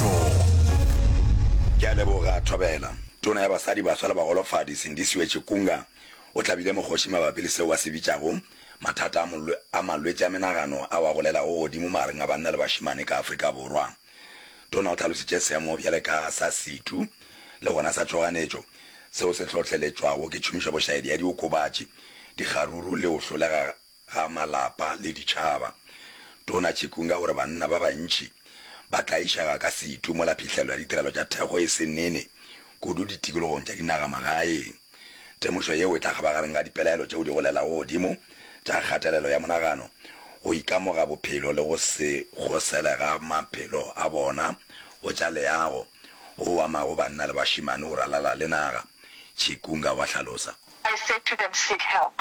Molato. Ke a leboga, Thobela. Tona ya Basadi, Baswa le Bagolofadi, Sindisiwe Chikunga, o hlabile mokgoši mabapi le seo a se bitšago mathata a a malwetši a menagano ao a golelago godimo magareng a banna le bašemane ka Afrika Borwa. Tona o tlhalositše seemo bjale ka sa setu le gona sa tšhoganetšo seo se hlohleletšwago ke tšhomišobošaedi ya diokobatši, dikgaruru le go hlolega ga malapa le ditšhaba. Tona Chikunga o re banna ba bantši ba tlaišega ka setu mola phihlelo ya ditirelo tša thekgo e se nene kudu ditikologong tša dinagamagaeng. Temošo yeo e tla kgabagareng ga dipelaelo tšeo di golelago godimo tša kgatelelo ya monagano, go ikamoga bophelo le go se kgosele ga maphelo a bona go tša leago, go amago banna le bašemane go ralala le naga, Chikunga wa hlalosa. I said to them, Seek help.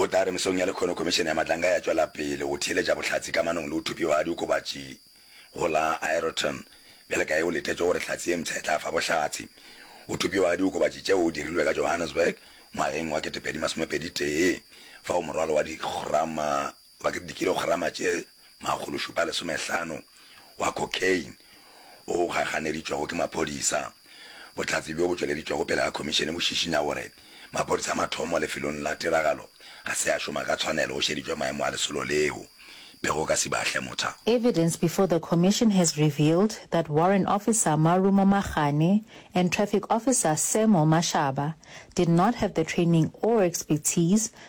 O tla re mesong ya lekhono Khomišene ya Matlanka ya tšwela pele go theeletša bohlatse kamanong le go thupiwa ga diokobatši go la Aeroton bjale ka ge go letetšwe gore hlatse ye mpsha e tla fa bohlatse go thupiwa ga diokobatši tšeo o dirilwe ka Johannesburg ngwageng wa 2021 fao morwalo wa dikgrama wa dikilograma tše makgološupa a lesomehlano wa cocaine o gaganeditšwego ke maphodisa. Bohlatse bjo bo tšweleditšwego pele ga khomišene bo šišinya gore maphodisa a mathomo lefelong la tiragalo ga se a šoma ka tshwanelo go šeditšwe maemo a lesolo leo pego ka Sibahle Motha. Evidence before the Commission has revealed that Warrant Officer Marumo Magane and Traffic Officer Semo Mashaba did not have the training or expertise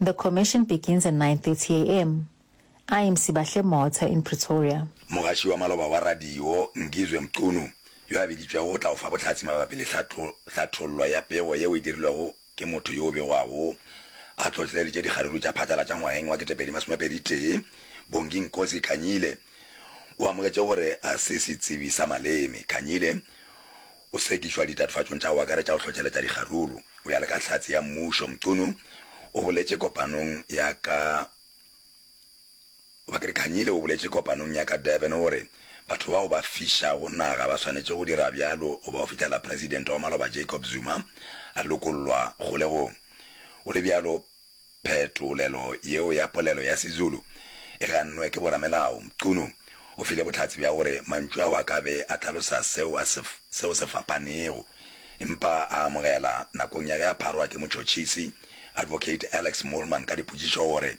The commission begins at 9:30 am, IMC Bahle Motha in Pretoria. Mogaši wa maloba wa radio Ngizwe Mchunu yo a biditšwego go tla go fa bohlatse mabapi le hlathollo ya pego yeo e dirilwego ke motho yo o begwago a tlotleleditše dikgaruru tša phatlalatša ngwageng wa ketepedi masome a pedi tee Bongi Nkosi Khanyile o amogetše gore a se setsebi sa maleme. Khanyile O sekišwa ditatofatšong tša go akaretša go hlohleletša dikgaruru go ya le ka Hlatse ya Mmušo. Mchunu o boletše kopanong ya ka Bakri Khanyile o boletše kopanong ya ka Durban gore batho bao ba fišago naga ba swanetše go dira bjalo go ba go fihlela Presidente wa maloba Jacob Zuma a lokollwa kgolegong. Go le bjalo, Phetolelo yeo ya polelo ya Sezulu e gannwe ke boramelao. Mchunu o file bohlatse bja gore mantšu ao a ka be a hlalosa seo a se seo se fapanego, empa a amogela, nakong ya ge a pharwa ke motšhotšhisi, Advocate Alex Moolman, ka dipotšišo gore